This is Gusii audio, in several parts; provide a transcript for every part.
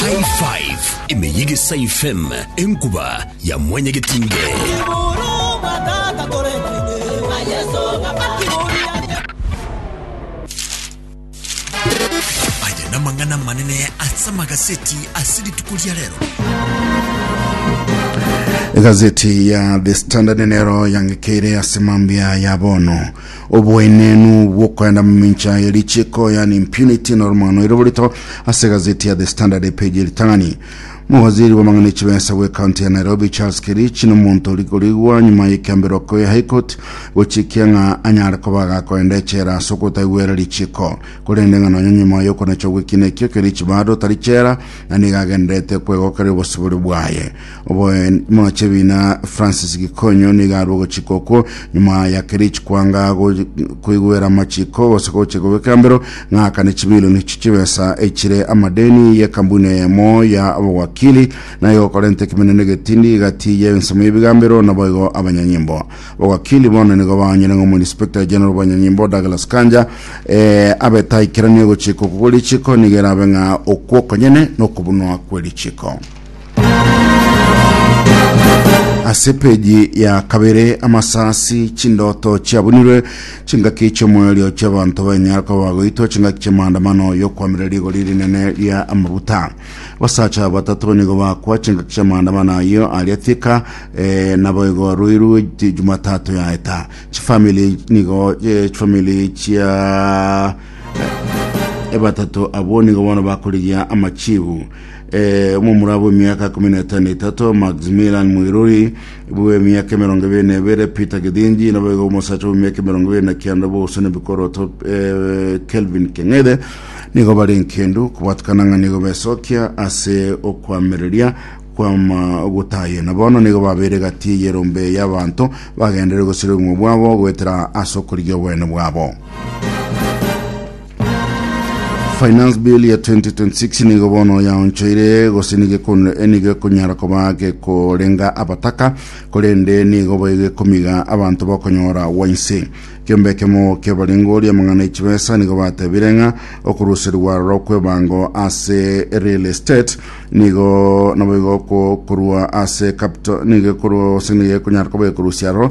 High Five emeyige saifem enkuba ya mwenye getinge. Aya namang'ana manene asa magaseti ase rituko ria rero. Gazeti ya The Standard nero yangekeire ase mambia ya bono Oboenenu bw'okoenda momincha ye richiiko, yaani impunity, noromwano ere borito ase egazeti ya The Standard epeji eritang'ani. Mowaziri bw'amang'ana ya chibesa bwe county ya Nairobi Charles Kerichi nomonto ori korigwa nyuma y'ekiambero okoya High Court gochikia ng'a anyare koba agakoenda echela ase okotaigwera richiiko. Korende ng'a nonya nyuma y'okonacha gw'ekiina ekio Kerichi bado tari chela na nigo agendererete kwegokeria obosibore bwaye. Omoche bina Francis Gikonyo nigo arwe ogochika okwo nyuma ya Kerich kwanga koigwera amachiko gose gocha kobeka mbero ng'akane chibilioni echi chibesa echire amadeni y'ekambuni eyemo ya obowakili naye gokorenta ekemeneno egetindi gati y'ensemo y'ebiga mbero naboigo abanyanyimbo abowakili bono nigo baonyire ng'a omoinspector general bwanyanyimbo Douglas Kanja eh, abeta aikeranie ogochika okwo kw'erichiko nigo erabe ng'a okwo okonyene nokobunwa kw'erichiko ase peji ya kabere amasasi chindoto chiabunirwe chingaki chiomoerio chiabanto banyara koba bagoitwa chingaki chiamaandamano yokwamera rigori rinene ria amabuta basacha batatu banigo bakwa chingaki chiamaandamano ayo aria tika eh, naboigo ruiru ti- jumatatu yaeta chifamili nigo eh, chifamili chia ebatatu abwo nigo bono bakorigia amachibu Eh, omomura bw'emiaka ikomi na etano etato, Maximilian Mwiruri, bw'emiaka emerongo ebere na ebere, Peter Githinji, nabo igo omosacha bw'emiaka emerongo ebere na kianda bw'ogosana ebikoroto, eh, Kelvin Keng'ethe, nigo bare enkendu kobatukana ng'a nigo besokia ase okoamereria kwama gotayena. Bono nigo babeire egati y'erombe y'abanto bagenderere gosira obogima bwabo goetera ase okorigia obonene bwabo. Finance Bill ya 2026 nigo bono yaonchoire gose nigo ekon- eh, nigo ekonyara koba gekorenga abataka korende nigo boigo ekomiga abanto bakonyora wainse kiombe ekemo kiabarengori amang'ana echibesa nigo batebire ng'a okuruserigwa aroro kw'ebango ase real estate nigo naboigo ko- korwa ase capital nigo ekorwa ase nigo ekonyara koba ekorusia aroro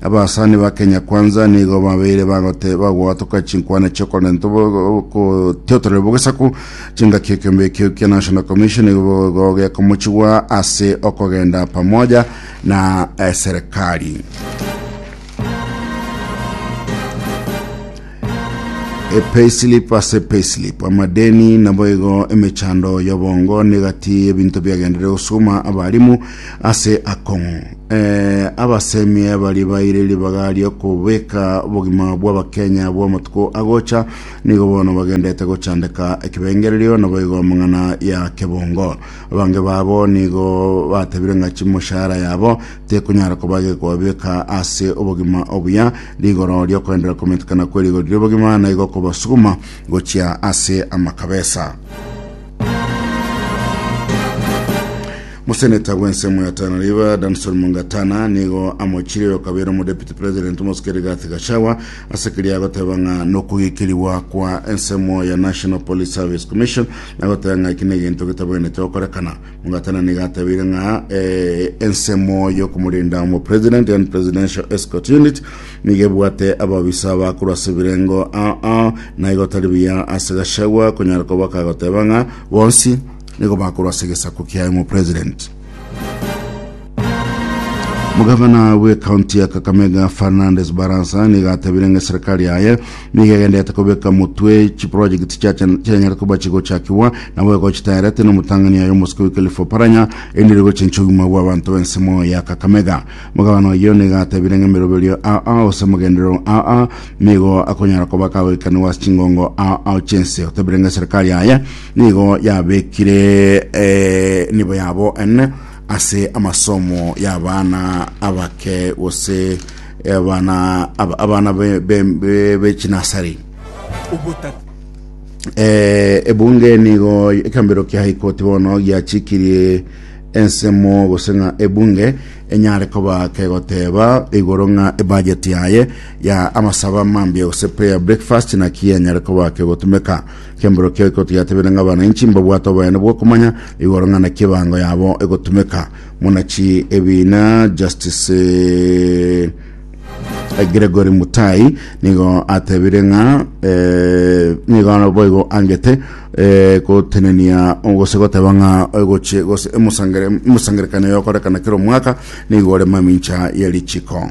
Abasani ba Kenya Kwanza nigo babeire bagote bagoatoka chinkwana chiokorenta gotiotorera bogesaku chingaki ekiombe ekio kia National Commission igo gekomochigwa ase okogenda pamoja na eh, serikali. Epayslip ase payslip amadeni naboigo emechando yobongo negati ebinto biagendere gosukuma abarimu ase akong'u eh, abasemie bari baire ribaga riokobeka obogima bw'abakenya bw'amatuko agocha nigo bono bagendete gochandeka ekebengererio naboigo amang'ana ya kebongo abange babo nigo batebire ng'a chimoshahara yabo tekonyara koba gekobabeka ase obogima obuya, rigoro riokoenderera kometekana kwe rigori ri'obogima naigo kobasuguma gochia ase amakabesa. Moseneta bw'ensemo ya Tana River Danson Mungatana nigo amochire okabeire omodepite president Mosike Rigathi Gachagua ase keria agoteba ng'a nokogikerigwa kwa ensemo ya National Police Service Commission nagoteba ng'a eki negento getabwenerete gokorekana Mugatana niga atabire ng'a eh, ensemo y'okomorenda omopresident and presidential escort unit niga ebwate ababisa bakorwa ase ebirengo ah, ah, na igo tari buya ase gachagua konyara koba kagoteba ng'a bonsi nigo bakorwa ase egesaku kiaye omopresident Omogavana bw'ekaunti ya Kakamega Fernandes Barasa nigo atebirie ng'a eserikari yaye nigo egenderete kobeka motwe chiprojekiti chianyare koba chigochakigwa nabo egochitaerete n'omotang'ani yaye omosike Wycliffe Oparanya erinde rigocha inche obogima bw'abanto b'ensemo ya Kakamega. Omogavana oyio nigo atebirie ng'a emeroberio aa gose amagenderero aa nigo akonyara koba akagoikanigwa ase chingongo aa chi'ense. Otebirie ng'a eserikari yaye nigo yabekire eh, nibo yabo ene ase amasomo y'abana abake gose abana ab- abana be- be- be- b'echinasari Obotata. Eh, ebunge nigo ekambero kia high court bono giachikirie ensemo gose ng'a ebunge enyare koba kegoteba igoro ng'a ebudget yaye ya amasaba mambia gose prayer breakfast naki enyare koba kegotumeka Chembura kioika otigatebere ng'a abananchi mbabwate oboyene bw'okomanya igoro ng'a naki ebango yabo egotumeka. Monachi ebiina Justice eh, Gregory Mutai nigo atebire ng'a eh, nigo boigo angete eh, gotenenia gose goteba ng'a egochie gose emosangere- emosangererekano yokorekana kera omwaka nigo ore mamincha ye richiko.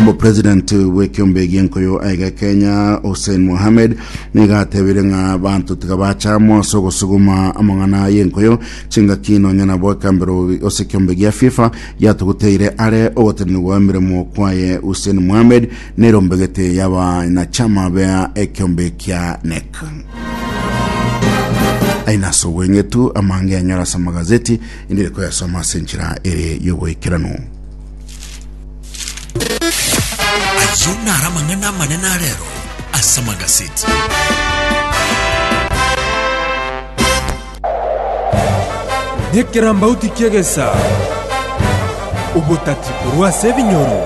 Omopresident bw'ekiombe gi'enkoyo aiga Kenya Hussein Mohamed nigo atebire ng'a abanto tiga bacha amo ase ogosuguma amang'ana y'enkoyo chingaki nonya nabo ekambero ase ekiombe gia FIFA giatuguteire are ogotenenigwa gw'emeremo kwaye Hussein Mohamed nerombegete y'abanachama bea ekiombe kia NEC ainaso obweng'etu amange anyora ase amagazeti endire koyasoma ase enchera ere y'ogoikeranu Ayio naro amang'ana amanene a rero ase amagaseti. Nekerambauti ki'egesa, obotati korwa ase ebinyoro.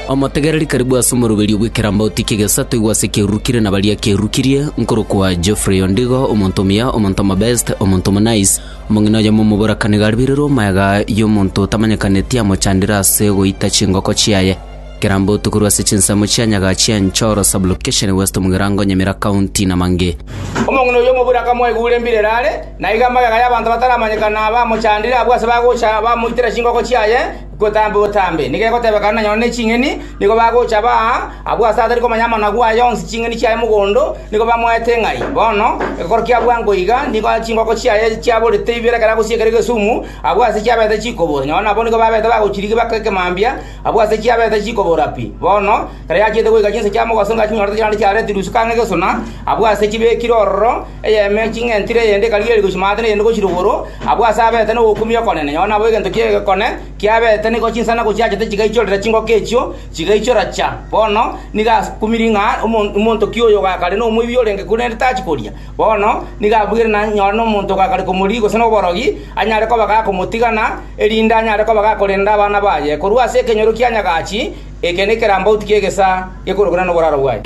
Omotegereri karibu ase omoroberio bw'ekerambauti ki'egesa toigwe ase ekerurukire na baria kerurukirie, nkorokwa Geoffrey Ondigo, omonto omuya, omonto omobest, omonto omonice, Omong'ina oyomo omoborakani garibirirwe omoyaga y'omonto otamanyekaneti amochandire ase goita chingoko chiaye. Kerambootu korwa ase chinsemo chia Nyaga chia Enchoro, Sub-location, West Mugirango, Nyamira County, na mang'e. Omong'ina oyio omobura akamoigura embira ere are, na igo amayaga y'abanto bataramanyekana bamochandire abwo ase bagocha bamoitera chingoko chiaye, Gotambe otambe! Nigo egotebeka ng'a nonya ne ching'eni nigo bagocha baa abwo aase atari komanya amanagu aye onsi ching'eni chiaye mogondo, nigo bamoete ng'ai. Bono, ekorokia abwo ango iga, nigo chingoko chiaye chiaborete ibere ekero agochia ekero egesumu, abwo aase chiabete chikobora. Nonya nabwo nigo babete bagochirigia baka ekemambia, abwo aase chiabete chikobora pi. Bono, ekero yachiete goika chinsa chia mobaso inga chinyorete chirande chiaretirwe isiko ang'e gesuna, abwo aase chibekire ororo, Eyemo ye ching'entire, eyende ekarigia ere gochia maate, na eyende gochia rogoro, abwo ase abeete nogokumia okonene. Nyago nabo egento ki'egekone kiabeete nigo chinsana gochiachete chigaichorera chingoko echio, chigaichora cha. Bono nigo akumirie ng'a omo- omonto ki oyo ogakare nomoibi orenge korende tachi koria? Bono nigo abwire na nyora nomonto ogakare komoria gose noborogi, anyare koba gakomotigana, erinde anyare koba gakorenda abana baye. Korwa ase ekenyoro kia nyagachi, Eke nekerambauti ki'egesaa gekorokana noboraro bwaye.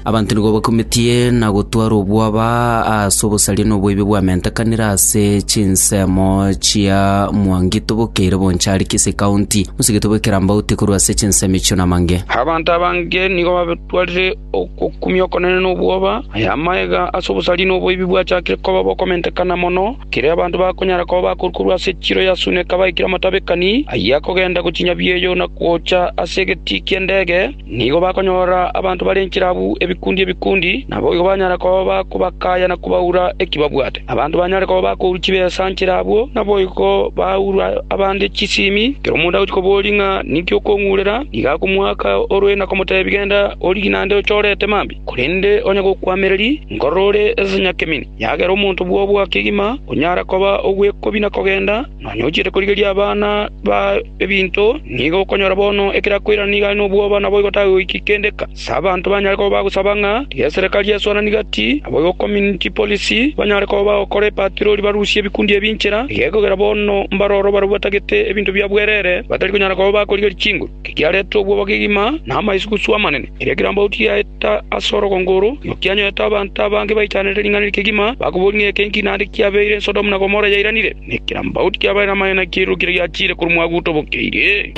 Abanto nigo bakumetie na gotwara obwaba ase obosaria na oboibi bwamentekanire ase chinsemo chia Mwangi tobokeire Bonchari, Kisii County. Mosigete bw'ekerambauti korwa ase chinsemo echio namange. Abanto abange nigo batwarire Ogokumia okonene nobwoba. Aya amaega ase obosariri na oboibi bwachakire koba bokomentekana mono, ekero abanto bakonyara koba bakorwa korwa ase echiro ya Suneka baikire amatabekani ayio akogenda gochinya bieyo na gocha ase egetii ki'endege. Nigo bakonyora abanto bare inchera abwo ebikundi ebikundi, naboigo banyara koba bakobakaya na kobaura eki babwate. Abanto banyare koba bakourwa chibesa nchera abwo naboigo baaurwa abande chisimi, kera omonto agochia koboria ng'a ninki okong'urera, nigo akomoaka orue na komoteebia, Genda origie naende ochorete mambia, korende onye gokwamereria, nkorora ore ense nyakemeni. Yagera omonto bw'obo akegima, onyara koba ogw'ekobina kogenda, nonya ochiete korigeria abana baye ebinto, nigo okonyora bono ekero akoirana nigo are nobwoba, naboigo tagoiki kende. S'abanto banyare koba bagosaba ng'a ri'eserekari esuanani gati abo igo community policy banyare koba bagokora epatirori barusie ebikundi ebi inchera, igekogera bono mbare oro barabwo batagete ebinto bia bwerere batari konyara koba bakorigeria chinguru. Kigiarete obwoba kegima na amaisugusugu amanene. Erio ekerambe agwo tigiaeta ase orogongo oro, igo kianyorete abanto abange baichanereire ring'ana eri kegima, bakobori ng'a eke inki naende kiabeire Sodomu na Gomora yairanire. Nekerabaout kiabae namayo na kiiruru keria giachiire korwa mwaguto obokeire.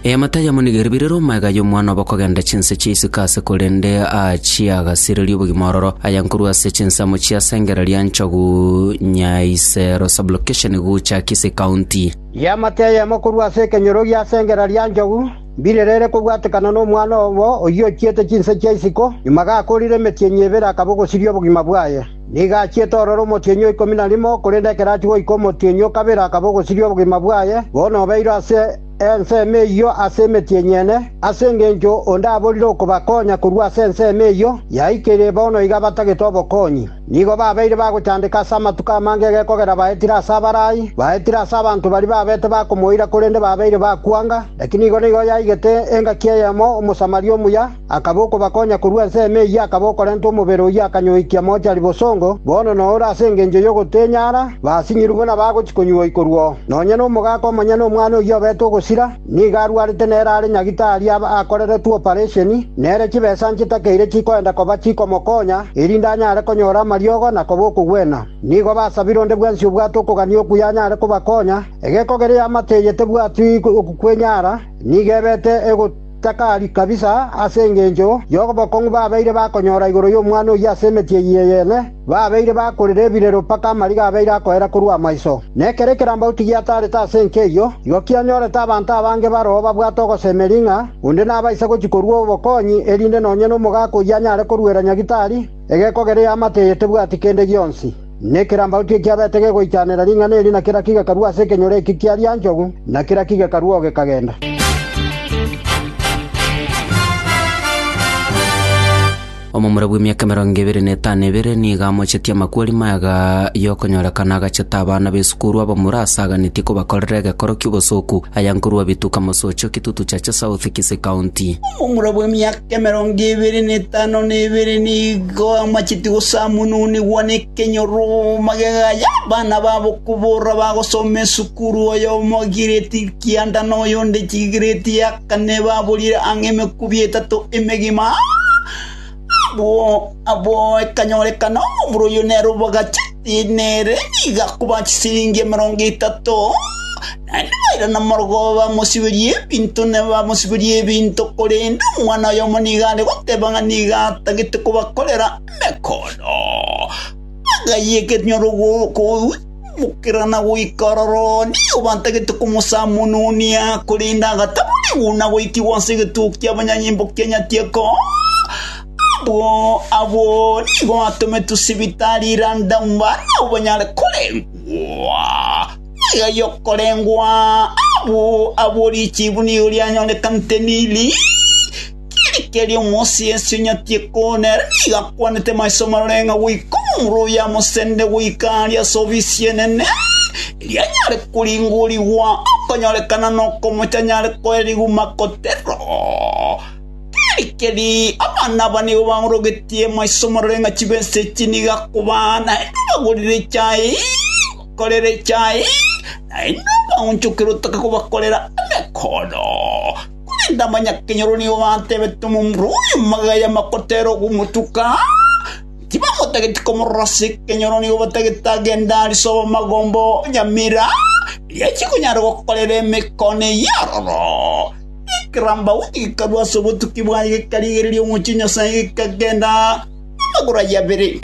Eamate ayamo nigo eriberire omaega y'omwana obo kogenda chinse chia isiko ase korende aachie agasirerie obogima ororo. Aya nkorwa ase chinsemo chia sengera ria nchogu Nyaisero sublocation Gucha Kisii County. Eamate ayamo korwa ase ekenyoro gia sengera ria nchogu. Mbirerere kobwatekana nomwana obo oyio ochiete chinse chia isiko, nyuma gakoorire emetienyi ebere akaba ogosiria obogima bwaye. Nigo achiete ororo omotienyi o ikomi na rimo, korende ekero achia goika omotienyi o kabere akaba ogosiria obogima bwaye, bono obeirwe ase ensemo eyio ase emetienyi ene, ase engencho onde aborire okobakonya korwa ase ensemo eyio yaikire bono iga batagete obokonyi. Nigo babeire bagochandeka ase amatuko amange egekogera baetire ase abarai, baetire ase abanto baria babete bakomoira korende babeire bakwanga, lakini igo nigo yaigete engaki eyemo Omosamaria omuya akaba okobakonya korwa ense ime eyio akaba okorenta omobere oyio akanyoikia mochari bosongo, bono na ore ase engencho y'ogotenyara basinyirwe buna bagochi konyuoikorwa oo. Nonya nomogaka omonyene omwana oyio obete ogosira, Nigo arwarete nere are nyagitari akoreretwe oparesheni, nere chibesa nchitakeire chikoenda koba chikomokonya, erinde anyare konyora amariogo na koba okogwena. Nigo basabire onde bwensi obwate okogania okuya anyare kobakonya. Egeko geria amato eye tebwati okwenyara, nigo ebete egotakari kabisa ase engencho y'obokong'u babeire bakonyora igoro y'omwana oyio ase emetienyi eyene. Babeire bakorire ebirero mpaka amariga abeire akoera korwa amaiso, na ekero ekerambauti giataarete ase enka eyio, igo kianyorete abanto abange baroo babwate ogosemeria ng'a onde nabaise gochia korua obokonyi, erinde nonya nomogaka oyio anyare koruera Nyagitari egekogera eyo amate eye tebwati kende gionsi. Na ekerambauti ekio kiabete gegoichanera ring'ana eri na kera kigekarua ase ekenyoro ekio kia rianchogu, na kera kigekarua oo gekagenda. Omomura bw'emiaka emerongo ebere na etano ebere nigo amochetie amakweri maya y'okonyorekana agachete abana b'esukuru abamura asaganetie kobakorera egekoro ki'obosoku aya nkorwa Bituka Mosocho, Kitutu Chache South, Kisii County. Omomura bw'emiaka emerongo ebere na etano na ebere nigo amachetie gosamununigwa nekenyoroma gegaye abana babo kobora bagosoma esukuru oyomo giredi kianda na oyonde giredi ya Ekane baburire ang'e emekubi etato emegima, abwo abwo ekanyorekana omorwa oyio nere obagacheti nere nigo akoba chisiringi emerongo etato. Naende bairana amorogo bamosiberia ebinto na bamosiberia ebinto, korende omwana oyomo nigo are goteba ng'a nigo atagete kobakorera emekondo. Bagayia ekenyoro gokoogwa. Mokerana goika aroro one, obantagete komosamononia, korende agataborigwa na goikigwa ase egetugo ki'abanyanyimbo kia Nyatieko. Abwo abwo nigo batometwe sibitari Randa mbare nabo banyare korengwa ebiaga y'okorengwa. Abwo abwo richibu nigo rianyorekanete Nili. Ekerio omosiesi onyatie koona ere nigo akwanete maiso marore ng'a goika omomura oye amosende goika aria ase ofisi enene, erio anyare koringorigwa, okonyorekana nokomocha anyare koe riguma koteba, Tari keri, abana aba nigo baorogetie maiso marore ng'a chibesa echi nigo akobaa, naende obagorere echae, obakorere echae, naende obaonchokere otake kobakorera emekondo. Korende abanyakenyoro nigo batebete omomura oye amagaya amakotera ogomotuka, tibamotageti komorora ase ekenyoro nigo batagete agende aa risoba magomba oo nyamira, erio achie konyara gokorera emekone eyio aroro. Ekerambauni gekarua ase obotuki bwaye gekarigereria omochie Nyasae gekagenda namagoro ayio abere.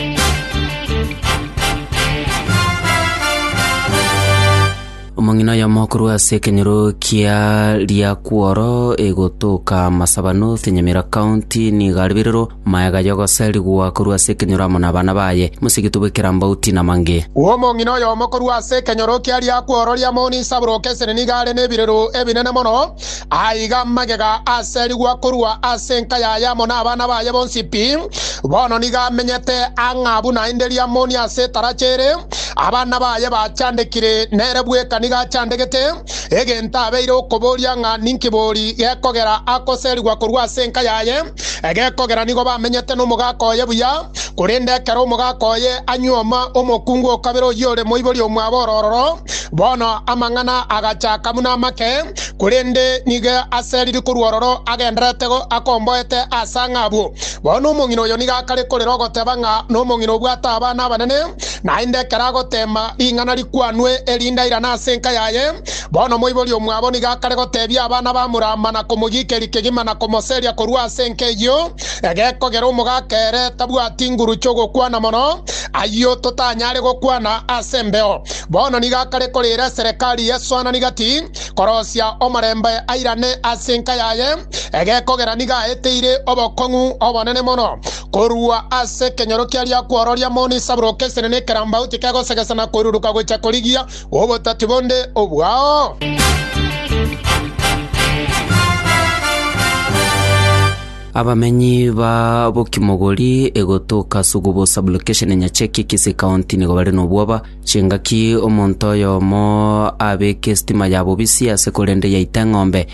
Omong'ina oyomo korwa ase ekenyoro kia Riakworo egotoka Masaba North, Nyamira County, nigo aribirirwe maega y'ogoserigwa korwa ase ekenyoro amo n'abana baye, mosigitwe bw'ekerambauti na mange. Omong'ina oyomo korwa ase ekenyoro kia Riakworo ria Mount Isaburoke Esene nigo are nebirero ebinene mono. Aiga magega aserigwa korwa ase enka yaye amo nabana baye bonsi pi. Bono nigo amenyete ang'a buna inde riamoni ase etaracha ere, abana baye bachandekire, nere bweka nigo achandegete, egento abeire okoboria ng'a ninki bori gekogera akoserigwa korwa ase enka yaye. Egekogera nigo bamenyete nomogaka oye buya, korende ekero omogaka oye anyuoma omokungu o kabere oyio ore moibori omwabo ororo, bono amang'ana agachaka buna amake, korende nigo aseriri korwa ororo agendererete akomboete ase ang'e abwo. Bono omong'ina oyo nigo akare korera ogoteba ng'a nomong'ina obwate abana abanene, naende ekero agoteema ring'ana rikwanwe erinde airane ase enka yaye, Bono omoibori omwabo nigo akare goteebia abana b'Amuraama na komogiikeria kegima na komoseria korwa ase enka eyio, egekogera omogaka ere tabwati nguru chi'ogokwana mono, ayio totanyare gokwana ase embeo. Bono nigo akare koreera eserekari y'esoanani gati, korosia omorembe airane ase enka yaye, egekogera nigo aeteire obokong'u obonene mono korwa ase ekenyoro kiaria kwororia moni isabroke esenene ekerambauti kegosegesa na koiruruka gocha korigia bw'obotati bonde obwao? Abamenyi ba Bokimogori egotoka Sugubo sublocation Nyacheki Kisi County nigo bare nobwoba chingaki omonto oyomo abeke estima ya bobisi ase korende yaita eng'ombe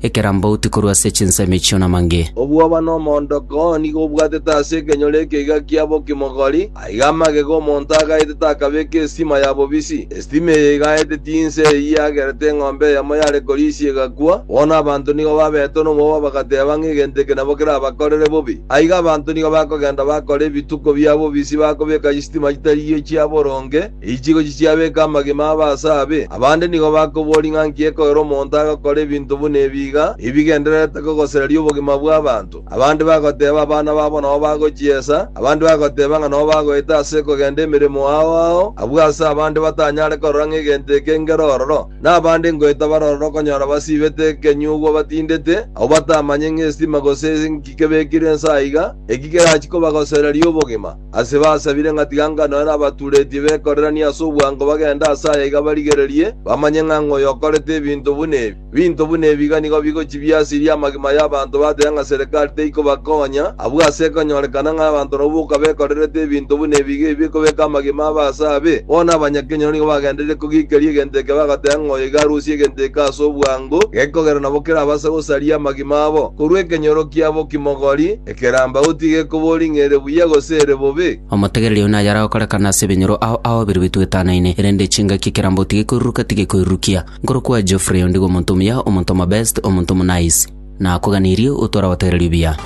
ekerambauti korwa ase chinsemi echio namange. Obwoba na omoondoko oo nigo obwatete ase ekenyoro ekeiga kia bokimogori, aiga amagega omonto agaete takabeka esitima ya bobisi. Esitima eye igaete tinse eyio yagerete eng'ombe eyemo yare korisia egakwa. Bono abanto nigo babetwe nomobaba bagateba ng'a egento eke nabo kerabakorere bobe. Aiga abanto nigo bakogenda bakora ebituko bia bobisi bakobeka chisitima chitarigio chia boronge. Echigochi chiabeka amagima abe ase abe, abande nigo bakoboria ng'a nki ekoera omonto agakora ebinto buna ebi iga, ebigendererete kogosereria obogima bw'abanto. Abande bagoteeba abana babo nao bagochiesa, abande bagoteeba ng'a nao bagoeta ase kogenda emeremo ao ao, abwo ase abande batanyare korora ng'a egento eke ngero ororo, na abande ngoeta bare ororo okonyora basiibete ekenyugwa batindete, abwo batamanye ng'a esitima gose nki kebekirwe inse aiga, eki kerachie kobagosereria obogima. Ase basabire ng'a tiga ngano ere abaturetie bekoreranie ase obwango bagende ase aya iga barigererie, bamanye ng'a ng'a oyokorete ebinto buna ebi. Ebinto buna ebi iga nigo bigochia biasirie amagima y'abanto bateba ng'a serekari teikobakonya, abwo ase ekonyorekana ng'a abanto nabwo boka bekorerete ebinto buna ebi iga ebi bikobeka amagima abo ase abe. Bono abanyakenyoro nigo bagendereire kogikeria egento eke bagoteba ng'a oyo iga arusie egento eke ase obwango, gekogera nabo kerabase gosaria amagima abo korwa ekenyoro kiabo kimogori, Keramba otige koba oring'eire buya gose ere bobe. Omotegereri oyio naye aragokorekana ase ebinyoro ao ao bire bitwetanaine, erende chingaki ekeramba otige koiruruka tige koirurukia. Nkorokwa Geoffrey ondigo omonto omuya, omonto omobest, omonto omonaice. Nakoganirie otware obotegererio buya.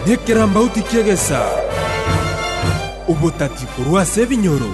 Nekeramba otikie gesa obotati korwa ase ebinyoro.